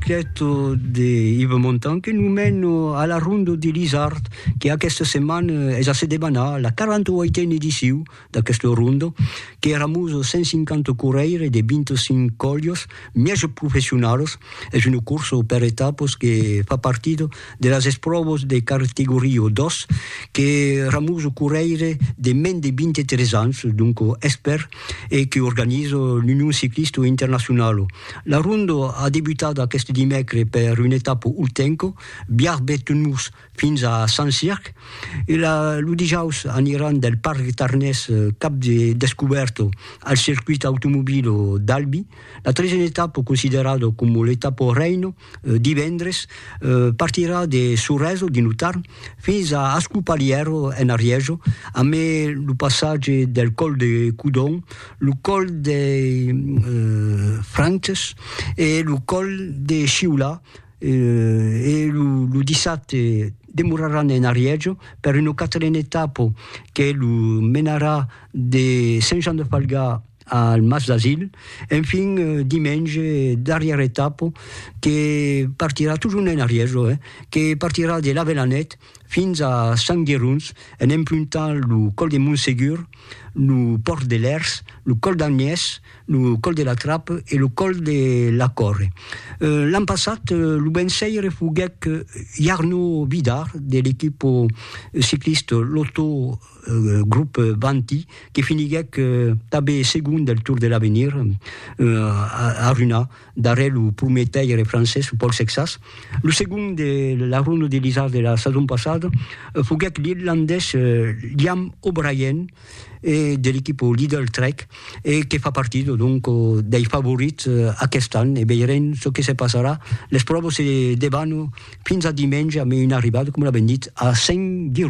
Cleto de Ive Montan que nous mène a la Rondo de l'Isard que aquesta setmana es a se debanar la 48a ediciu d'aquesta Rondo que eramus 150 corrèires de 25 còlios mièges professionalos. Es una corsa per etapas que fa partida de las espròvas de categoria 2 que eramus corrèires de mens de 23 ans, donc expèrts. e que organiza l'Union Ciclista Internacionala. La ronda a debutat aqueste dimècre per una etapa ultenca, Biarb-Bettenmurs fins a Saint-Circ, e lo dijaus aniran del Parc Tarnés cap de descubèrta al circuit automobila d'Albi, la tresena etapa considerada coma l'etapa reina divendres, partirà de Sorèso, dins lo Tarn, fins a Ascopalièro, en Arièjo, a mai lo passatge del còl de Codon, lo còl dei Frances e lo còl de Sciolà, e lo dissabte demoraràn en Arièjo per una quatrena etapa que lo menarà de Sent Jan de Falgà, al Mas d'Asil, enfin dimenge darrièra etapa que partirà totjorn en arrièr jo eh, que partirà de l'Avelanèt fins a Sant Gerons en emprontant lo còl de Montsegur, lo pòrt de Lèrs, lo còl d'Agnès, lo còl de la Trape e lo còl de la Còrre. L'an passat lo vençaire foguèt Jarno Vidar de l'equipa ciclista Lotto. grop Vanti, que finiguèc tanben segon del Tour de l'Avenir a Runha, darrèr lo prumèr taire francés Paul Sexas. Lo segon de la Ronda de l'Isard de la sason passada foguèc l'irlandés Liam O'Brien de l'equipa Lidl Trek e que fa partir donc dei favorits aquest an e veirem çò que se passarà. Les pròvas se debanam fins a dimenge amb una arribada, coma l'avèm dit, a Saint-Girons.